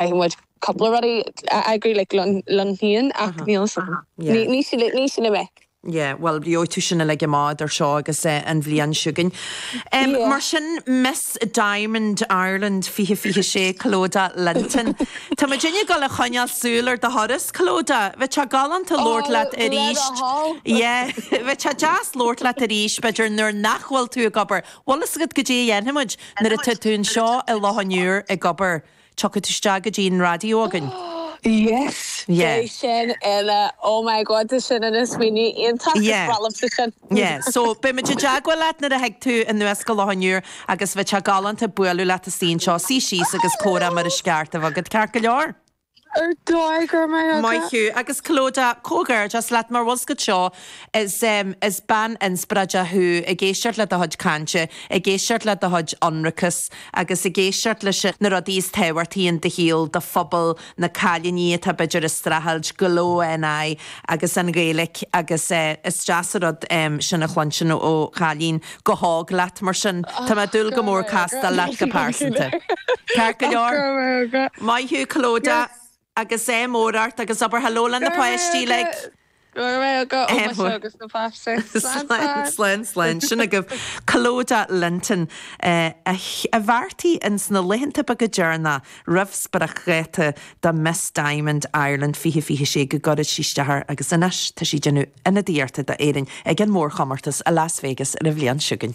Caithfidh muid cúpla rud a eagrú like liom féin ach níl sin, ní sin a mhic. Yeah bhuel gheobhaidh tú sin uilig amach eadar seo agus an bhliain chugainn. Mar sin Miss Diamond Ireland 2026 Clodagh Linton, tá muid uilig dul a choinneáil súil ar do thuras Clodagh, bheadh sé galánta labhairt leat arís, yeah bheadh sé deas labhairt leat arís b'fhéidir nuair nach bhfuil tú ag obair, bhfuil fhios agat goidé a dhéanfaimid nuair atá tú anseo i Loch an Iúir ag obair. Tiocfaidh tú isteach go dtí an raidió againn. Yes! Beidh sin ina, oh my god, tá sin ina smaoineamh iontach, is breá liomsa sin. Yeah, so beimid i dteagmháil leat nuair a thig tú anuas go Loch an Iúir agus bheadh sé galánta bualadh leat istigh anseo, suí síos agus comhrá mar is ceart a bheith againn, ceart go leor. Ar dóigh, go raibh maith agat. Maith thú, agus Clodagh, comhghairdeas leat mar bhfuil fhios agat. Is is bean inspioráideach thú, ag éisteacht le do chuid cainte, ag éisteacht le do chuid ionracas agus ag éisteacht leis na rudaí is tábhachtaí in do shaol, do phobal, na cailíní atá b'fhéidir ag streachailt, Glow NI agus an Ghaeilic agus eh is deas an rud em sin a chluinstin ó chailín chomh hóg leat mar sin tá mé ag Och, dúil go go raibh mór maith agat. castáil leat go pearsanta. Ceart go Och, go leor. raibh maith agat. Maith thú Clodagh! Yes. agus ádh mór ort agus abair hello le na páistí uilig. Go raibh go oh my show agus na páistí slán slán slán sin agaibh Clodagh Linton a bheartaigh ins na laethanta beaga deireanacha roimh spriocdháta do Miss Diamond Ireland 2026 go gcuirfeadh sí isteach air agus anois tá sí déanamh ionadaíochta d'Éirinn ag an mórchomórtas i Las Vegas ar an bhliain chugainn.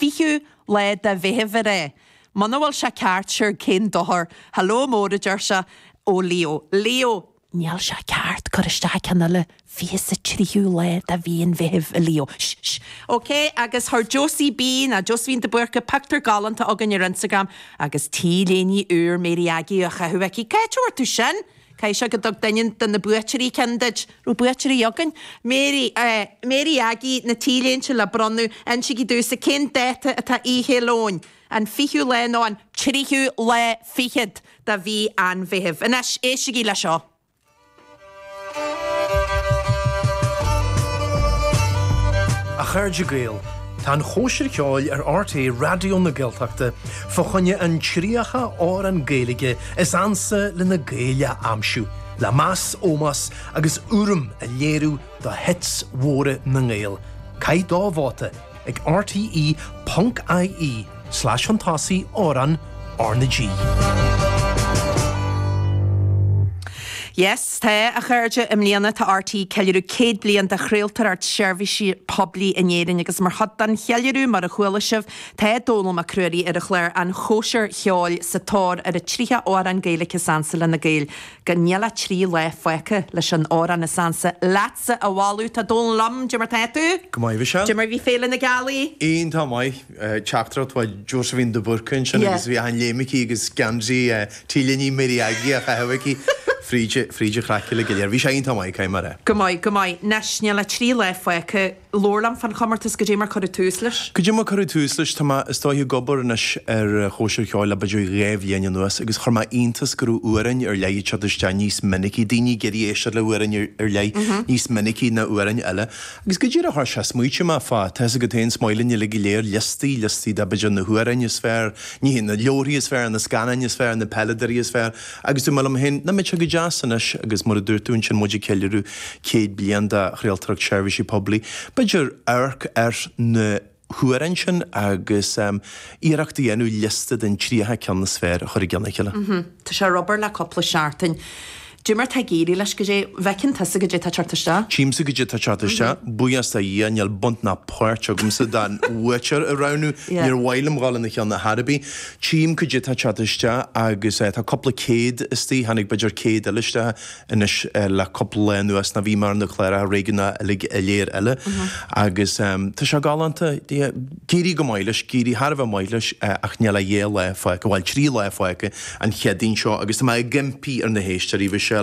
20ú lá de Mheitheamh ar é. Muna bhfuil sé ceart, siúr cén dochar? Hello mór, a deir sé, ó Leo. Leo. Níl sé ceart, cuir isteach ceann eile, fiche 's a 3ú lá de Mhí an Mheithimh, a Leo. Sh! Sh! OK, agus chuir Josie B, nó Josephine de Búrca, pictiúr galánta chugainn ar Instagram, agus T-léine úr Mary Aggie á chaitheamh aici. Cá bhfuair tú sin? Caithfidh sé go dtug duine de na buaiteoirí ceann duit. raibh buaiteoirí againn? Mary, Eh, Mary Aggie, na T-léinte le bronnadh, insígí domhsa cén dáta atá Oíche Fhéile Eoin? An fichiú lá nó an. tríú lá fichead de mhí an Mheithimh. Anois, éistigí le seo. A chairde Gael, tá an chóisir cheoil ar RTÉ Raidió na Gaeltachta fá choinne an 30 amhrán Gaeilge Is ansa le na Gaeil a aimsiú, le meas, ómós agus urraim a léiriú do hits mhóra na nGael, caith do vóta ag RTÉ.ie/Fantásaí Amhrán RnaG. Yes, tá, a chairde, i mbliana tá RTÉ ag ceiliúradh 100 bliain de chraoltóireacht seirbhíse poiblí in Éirinn agus mar chuid den cheiliúradh, mar a chuala sibh, Tá Dónall Mac Ruairí ar an chlár An Chóisir Cheoil sa tóir ar an 30 amhrán Gaeilge is ansa lena Gaeil. Agus níl ach trí lá fágtha leis an amhrán is ansa leatsa a bhailiú! Tá Dónall liom. Goidé mar tá tú! Go maith a Mhichelle. Goidé mar bhí Féile na Gealaí. Iontach maith. Teachtaireacht ó Josephine de Búrca ansin agus bhí achan léim aici agus geansaí t-léine Mary Aggie á chaitheamh aici fríd an chraic uilig go léir. Bhí sé iontach maith, caithfidh mé a rá. Go maith, go maith. Anois níl ach trí lá fágtha. labhair liom fán chomórtas goidé mar cuireadh tús leis. Goidé mar cuireadh tús leis. Tá mé, is dóiche, ag obair anois ar Chóisir Cheoil le b'fhéidir dhá bhliain anuas agus chuir mé iontas go raibh amhráin ar leith ag teacht isteach níos minicí, daoine ag iarraidh éisteacht le hamhráin ar leith níos minicí ná amhráin eile. Agus go díreach mar sin smaoitigh mé fá, tá fhios agat féin is maith linn uilig go léir liostaí, liostaí de b'fhéidir na hamhráin is fearr, ní hé, na leabharthaí is fearr, na scannáin is fearr, na peileadóirí is fearr, Agus dúirt mé liom féin, nach mbeadh sé go deas anois agus mar a dúirt tú ansin muid ag ceiliúradh 100 bliain de chraoltóireacht seirbhíse poiblí. B'fhéidir amharc ar na hamhráin sin agus iarracht a dhéanamh liosta den 30 ceann is fearr a chur i gceann a chéile. Tá sé ar obair le cúpla seachtain. Goidé mar tá ag éirí leis goidé. Bhfeiceann tusa goidé tá ag teacht isteach. Tchímse goidé tá ag teacht isteach. Buíochas do Dhia níl baint ná páirt agamsa don bhuaiteoir a roghnú. Níor mhaith liom dhul ina cheann ar chor ar bith. Tchím goidé tá ag teacht isteach agus tá cúpla céad istoigh, tháinig b'fhéidir céad eile isteach anois le cúpla lá anuas, nó bhí mé ar na cláracha réigiúnacha uilig go léir eile agus tá sé galánta, d'éirigh go maith leis, d'éirigh thar a bheith maith leis ach níl ach dhá lá fágtha, bhuel trí lá fágtha an Chéadaoin seo agus tá mé ag impí ar na héisteoirí, bhí sé